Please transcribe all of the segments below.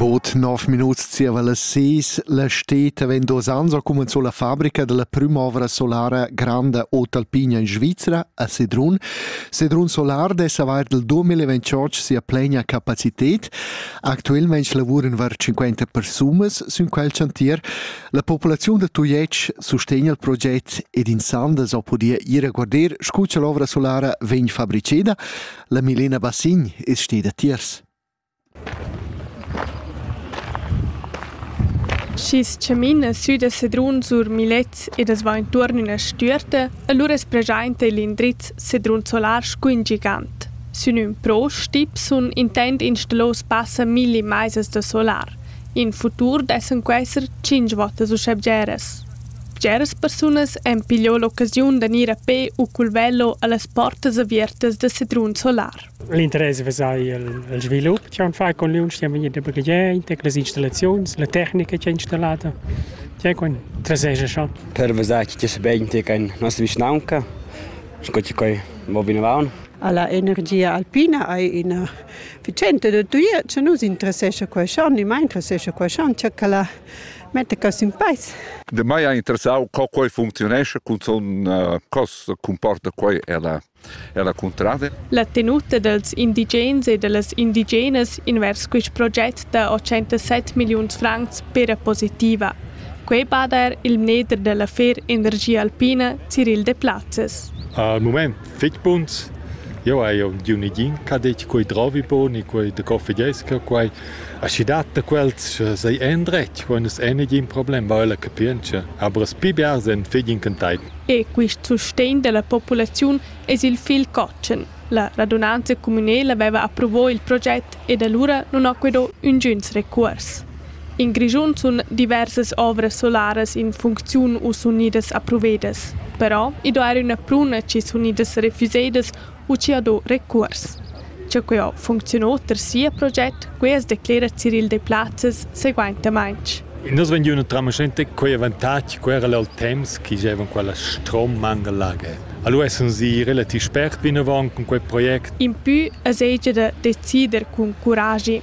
Bod nov minuts zieva las seis la steta vegn dos ans ha cumenzò la fabrica della prüm'ovra solara granda Otalpina in Svizzera a Sedrun. Sedrun Solar dess avair del 2028 sia plena capacitet. Actuelmente lavuran var 50 persunas sün quel chantier. La populaziun da Tujetsch sustegna il proget ed in Sandes ho podia ir a guarder scu cha l'ovra solara vegn fabriceda. La Milena Bassign es steda tiers. Schi's chamina sü da Sedrun sur Milets ed as va intuorn üna stüerta, alura es preschainta il indriz Sedrun Solar scu ün gigant. Sün ün pro Stipsun intend installar spassa milli maisas da solar. In futur dessan quesser tschinch votas uschè bgeras. Bgeras persunas han pigliò l'occasiun da gnir a pè u cul velo a las portas aviertas da Sedrun Solar. L'interess vesà il, il svilup chi han fat con liunsch chi han vegni da baghegiaint, las installaziuns, la tecnica chi ha installata, chi con traseja schon. Per vesar chi tes begn te can nossa vischnaunca, sco chi coi vo vinavant. Alla energia alpina hai ina efficiente da tuia, che nus interessescha qua schon, ni mai interessescha qua schon, che la Mette cos in peis. De mai ha interessau co quei functionesce, cun son uh, cos comporta quei ella ella contrada. La tenuta dels indigens e dellas indigenas invers quist proget da 807 milliuns francs pera positiva. Quei bada er il mneder dell'affair Energia Alpina Cyril de Platzes. Al moment Fich buns. Jeu hai udiu negin ch'ha detg quei drovi bun e quei de coffegesca, quei. Aschi dat da quels sei endretg, quei nus ei negin problem, va ella capientscha. Aber es pli bia sen figl incantai. E quist sustegn della populaziun es il fil cotschen. La radunanza communela veva approvò il proget ed allura nun ho quedò üngüns recuors. In Grischun sun diversas ovras solaras in funcziun u sun gnüdas approvedas. Però i do eir üna pruna chi sun gnüdas refüsedas u chi ha do recuors. Cha quio funcziuno oter sia proget, quai as declera Cyril Deplazes seguaintamaing. I nu es vegniü üna tramaschenta co avantag ch'era al temps chi giovan quella strommanga lager. Alura essans i relativ spert vinavant cun quel project. Impü es eir da decider cun curagi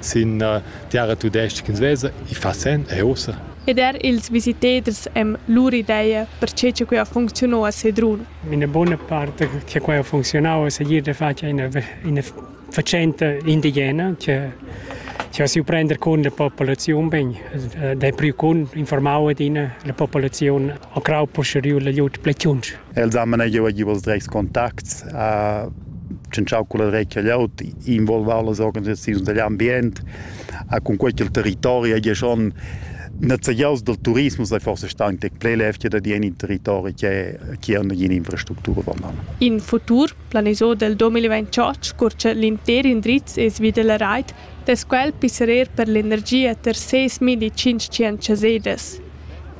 sin tiara tudestga svesa, i fa sen e ussa. Ed er ils visitaders èn lur ideia pertge che quai ha funcziunà a Sedrun. Ina bona part che quai ha funcziunà è segir da far ina, ina facenta indigena che che si prender con la popolazione ben dai pru con informao adina la popolazione a crau posteriu la lut plechunch Els han manegiau giu els dretgs contacts, ha tschintschau culla dretga glieud, involvau las organisaziuns dell'ambient, ha cun quei ch'il territori hagi schon nezegiaus dal turismo sei forse stau in tec plei levgia da dir in territori che che ha nagina infrastructura valan. In futur planisò del 2028 curce l'inter indriz es vi della rait, des quel pisserer per l'energia ter 6.500 sedes.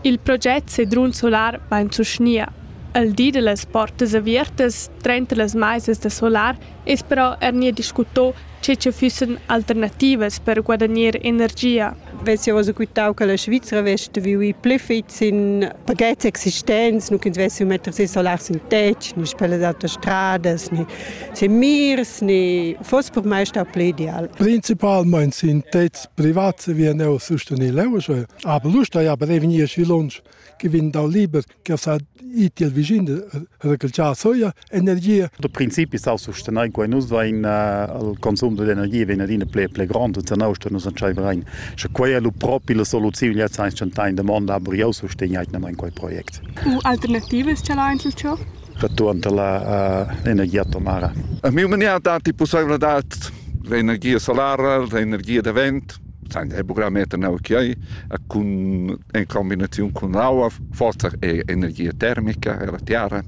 Il project Sedrun Solar vain suschnia. El di da las portas aviertas trenta las maisas da solar es però eir gnir discutto che cha füssan alternativas per guadagner energia. Vess jau oz quitau che la Svizra vess vivi pli fitg sin pachets existents, nu ch'ins vess metter ses solar sintetics, ni per las autostradas, ni sin mirs, ni foss per mai stà pli ideal. Principalmain sintets privats vien eu sustenir leu, sche Aber Lust haja prevegnì sü lunsch che vegn dal liber che ha sa iti il vicin recalcià soia energia. Da principi sa sustenain quai nus vain il consum d'energia vegn adina ple ple grand e zanau sta nus antschaiverein. Sche quai è lu propi la soluziun ja sains chantain demanda aber jau sustegnaitnamain quai projekt. U alternativas ce la einzel ciò? Returnt alla uh, energia atomara. A miu mania dati pussaibilidad l'energia solara, l'energia da vent, Nein, è buca meter neu che ei cun en combinaziun cun l'aua forsa è energia termica ella tiara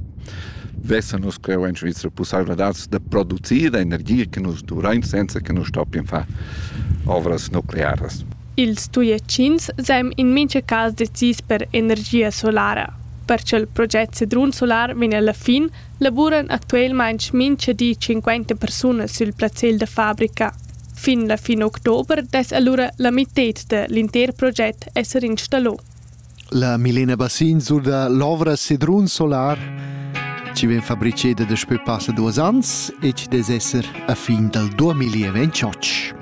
vesan nus cheu en Svizra pusseivladads da producir energia che nus duvrein senza che nus stoppien far ovras nuclearas. Ils Tujetschins seign in mintga cas decis per energia solara. Per ch'il project Sedrun Solar vegn alla fin, lavuran actualmein mintga di 50 persunas sil plazzal da fabrica. Fin la fin october dess alura la mitted da l'intер project esser installò. La Milena Bassin surda l'ovra Sedrun Solar ci vien fabriceda daspö passa duos ans e ci des esser a fin dal 2028.